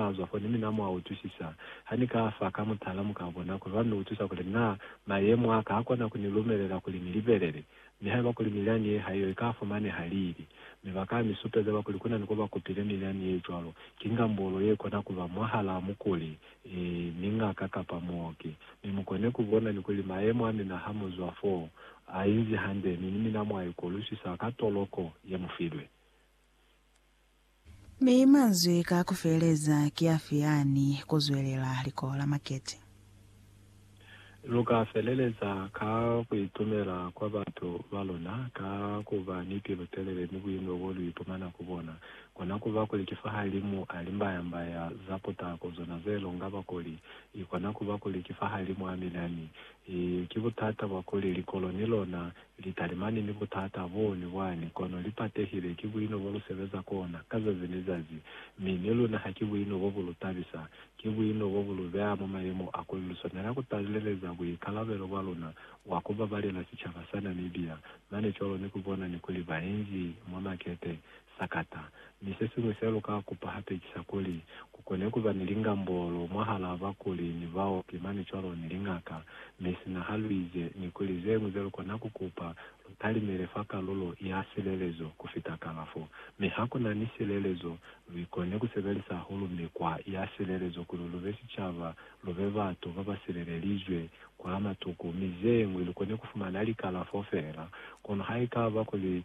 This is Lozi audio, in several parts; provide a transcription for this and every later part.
Nazwa fani mi na mwa utwisisa. Ha ni ka fa ka mutala, mu ka bona kuli lwa ni utwisa kuli na mayemo a ka ha kona ku ni lumelela kuli ni libelele. Mi haiba kuli milyani ye ha iyo i ka fumaneha lili, mi ba ka mi supeza ba kuli ku na ni ko ba kupile milyani ye cwalo, ki ngambolo ye kona ku ba mwahalaa mukuli, ee, ni ngaka kapa muoki. Mi mu kone ku bona ni kuli mayemo a mina ha mu zwa foo, a inzi hande, mi ni mina mwa ikolusisa ka toloko ye mu filwe. Mi manzwi ka kufeleza ki afi yani kuzwelela likoho la makete? Luka feleleza ka kuitumela kwa batu baluna, ka kuba ni pilu-telele ni buino bo lu ipumana ku bona. Kona kuba kuli ki fahalimu a limbaya-mbaya za putako zona ze longa bakuli, i kona kuba kuli ki fahalimu a minani. I ki butata bwa kuli likolo ni lona Litalimani ni butata bo ni bwani, kono li patehile ki buino bo lu sebeza kona ka zazi ni zazi. Mi ni luna ha ki buino bo bu lu tabisa. Ki buino bo bu lu beha mwa mayemo a kuli lu swanela ku taleleza buikalabelo bwa luna bwa ku babalela sicaba sa Namibia mane cwalo ni ku bona ni kuli bainzi mwa makete Sakata. Mi sesiñwi seluka kupa hape ki sa kuli, kukone kuba ni lingambolo mwahalaa bakuli ni baoki mane cwalo ni lingaka. Mi sina haluize ni kuli zeñwi zelukona kukupa, lu talimele fa kalulo ya silelezo kufita kalafo. Mi hakuna ni silelezo, luikone kusebelisa hahulu mikwa ya silelezo kuli lube sicaba, lube batu babasilelelizwe kwa matuku, mi zeñwi lukone kufumana likalafo feela. Kono haikaba kuli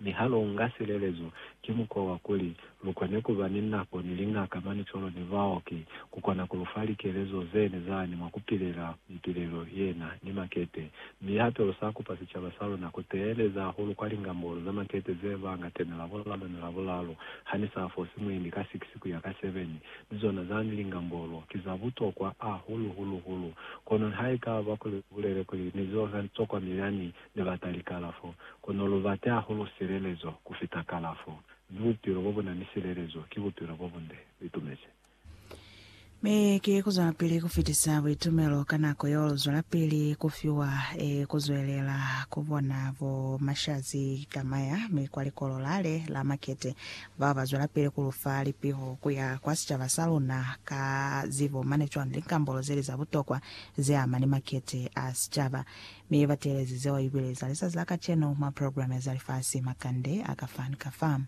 Mi ha lu nga silelezo, ki mukwa wa kuli lu kone ku ba ni nako ni liñaka, manicolo, ni baoki, ku kona ku lu fa likelezo ze ne za ni mwa ku pilela mipilelo yena ni makete. Mi hape lu sa kupa sicaba sa luna ku teeleza hahulu kwa lingambolo za makete ze ba nga tena Labulalu ni Labulalu ha ni sa fosi mwendi ka 6 ku ya ka 7. Mi zona zani lingambolo ki za butokwa hahulu, hulu, hulu. Kono nihaikaba kuli lu bulele kuli ni zo za tokwa milani, ne bata likalafo, kono lu bate hahulu silelezo ku fita kalafo, mi bupilo bo bu na ni silelezo ki bupilo bo bunde. Lu itumezi? Mi ki ku zwelapili ku fitisa buitumelo ka nako yeo lu zwelapili ku fiwa, ee, ku zwelela ku bona bo Mashazi Kamaya mi kwa likolo lale la makete, bao ba zwelapili ku lu fa lipiho ku ya kwa sicaba sa luna ka zibo mane cwale ni likambolo zeli za butokwa ze ama ni makete a sicaba. Mi ba teelezi zeo ibile za lizazi la kacenu mwa programe za lifasi, makande a ka fa ni ka fa.